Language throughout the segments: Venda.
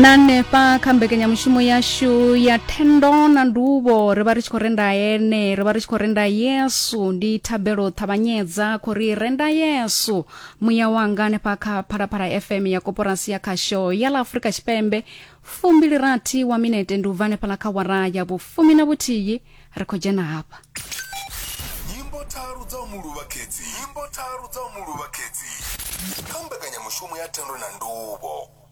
na hanefha kha mbekanyamushumo yashu ya thendo na nduvho ri vha ri tshi khou renda ene ri vha ri tshi khou renda yesu ndi thabelo ṱhavhanyedza khou ri renda yesu muya wanga hanefha kha phalaphala fm ya koporasi ya khasho ya ḽa afurika tshipembe fumbili rathi wa minete ndi u bva hanefhaḽa kha wara ya vhufumi na vhuthihi ri khou dzhena hafha nyimbo tharu dza u mu luvha khedzi nyimbo tharu dza u mu luvha khedzi kha mbekanyamushumo ya thendo na nduvho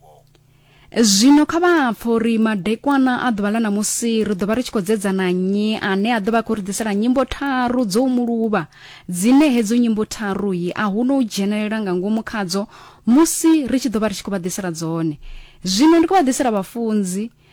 zwino kha vha pfha uri madekwana a ḓuvha ḽa ṋamusi ri ḓo vha ri tshi khou dzedzana nnyi ane a ḓo vha khou ri ḓisela nyimbo tharu dzo u muluvha dzine hedzo nyimbo tharuyi a hu no u dzhenelela nga ngomu khadzo musi ri tshi ḓo vha ri tshi khou vha ḓisela dzone zwino ndi khou vha ḓisela vhafunzi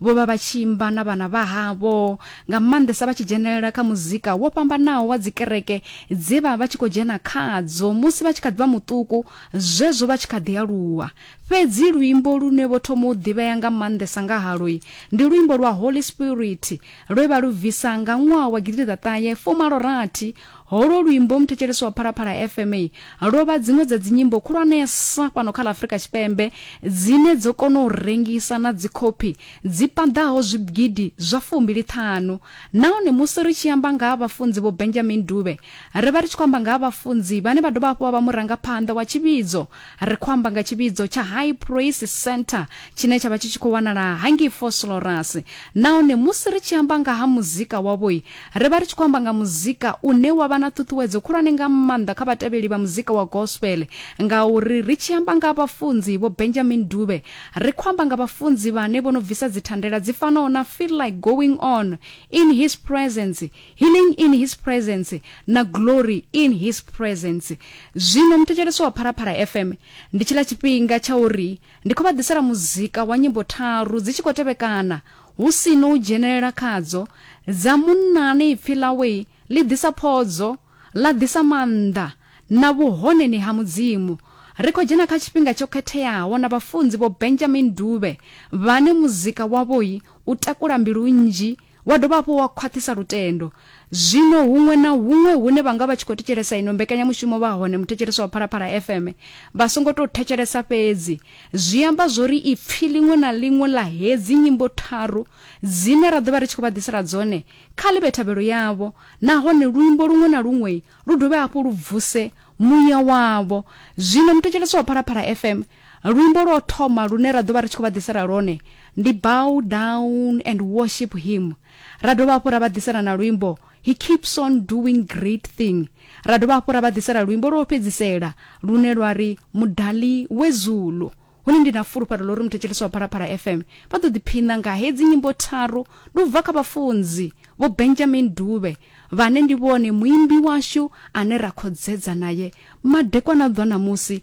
Vho vha vha tshi imba na vhana vha havho, nga maanḓesa vha tshi dzhenelela kha muzika wo fhambanaho wa dzikereke dze vha vha tshi khou dzhena khadzo musi vha tshi kha ḓi vha muṱuku, zwezwo vha tshi kha ḓi aluwa. Fhedzi luimbo lune vho thoma u ḓivhea nga maanḓesa nga haloi ndi luimbo lwa Holy Spirit lwe vha lu bvisa nga ṅwaha wa gidiḓaṱahe fumalo rathi Holwo luimbo muthetshelesi wa Phalaphala FM lwo vha dziṅwe dza dzinyimbo khulwanesa fhano kha ḽa Afrika Tshipembe dzine dzo kona u rengisa na dzikhophi dzi paḓaho zwigidi zwa fumbili ṱhanu. Nahone musi ri tshi amba nga ha vhafunzi Vho Benjamin Dube, ri vha ri tshi khou amba nga ha vhafunzi vhane vha dovha hafhu vha vha murangaphanḓa wa tshivhidzo ri khou amba nga tshivhidzo tsha high praise center tshine tsha vha tshi tshi khou wanala hangei foslorus nahone musi ri tshi amba nga ha muzika wavhoi ri vha ri tshi khou amba nga muzika une wa vha na ṱhuṱhuwedzo khulwane nga maanḓa kha vhatevheli vha muzika wa gospel ngauri ri tshi amba nga vhafunzi vho benjamin dube ri khou amba nga vhafunzi vhane vho no bvisa dzithandela dzi fanaho na feel like going on in his presence Healing in His Presence na Glory in His Presence. Zwino muthetshelesi wa Phalaphala FM, ndi tshiḽa tshifhinga tsha uri ndi khou vha ḓisela muzika wa nyimbo tharu dzi tshi khou tevhekana hu si no u dzhenelela khadzo dza munnani ipfi ḽawe ḽi ḓisa phodzo, ḽa ḓisa maanḓa na vhuhoneni ha Mudzimu. Ri khou dzhena kha tshifhinga tsho khetheaho na vhafunzi Vho Benjamin Dube vhane muzika wavho u takula mbilu nnzhi wa dovha hafhu wa khwaṱhisa lutendo. Zwino huṅwe na huṅwe hune vha nga vha tshi khou thetshelesa ino mbekanyamushumo vha hone muthetshelesi wa Phalaphala FM vha songo tou thetshelesa fhedzi zwi amba zwori ipfi ḽiṅwe na ḽiṅwe ḽa hedzi nyimbo tharu dzine ra ḓovha ri tshi khou vha ḓisela dzone kha ḽi vhe thabelo yavho nahone luimbo luṅwe na luṅwe lu dovhe hafhu lu vuse muya wavho zwino muthetshelesi wa Phalaphala FM Luimbo lwa u thoma lune ra ḓo vha ri tshi khou vha ḓisela lwone ndi Bow Down and Worship Him. Ra dovha hafhu ra vha ḓisela na luimbo He Keeps On Doing Great Thing. Ra dovha hafhu ra vha ḓisela luimbo lwa u fhedzisela lune lwa ri Mudali Wezulu. Hone ndi na fulufhelo ḽa uri muthetshelesi wa Phalaphala FM vha ḓo ḓiphiṋa nga hedzi nyimbo tharu ndi u bva kha vhafunzi Vho Benjamin Dube vhane ndi vhone muimbi washu ane ra khodzedza naye madekwana a ḓwa ṋamusi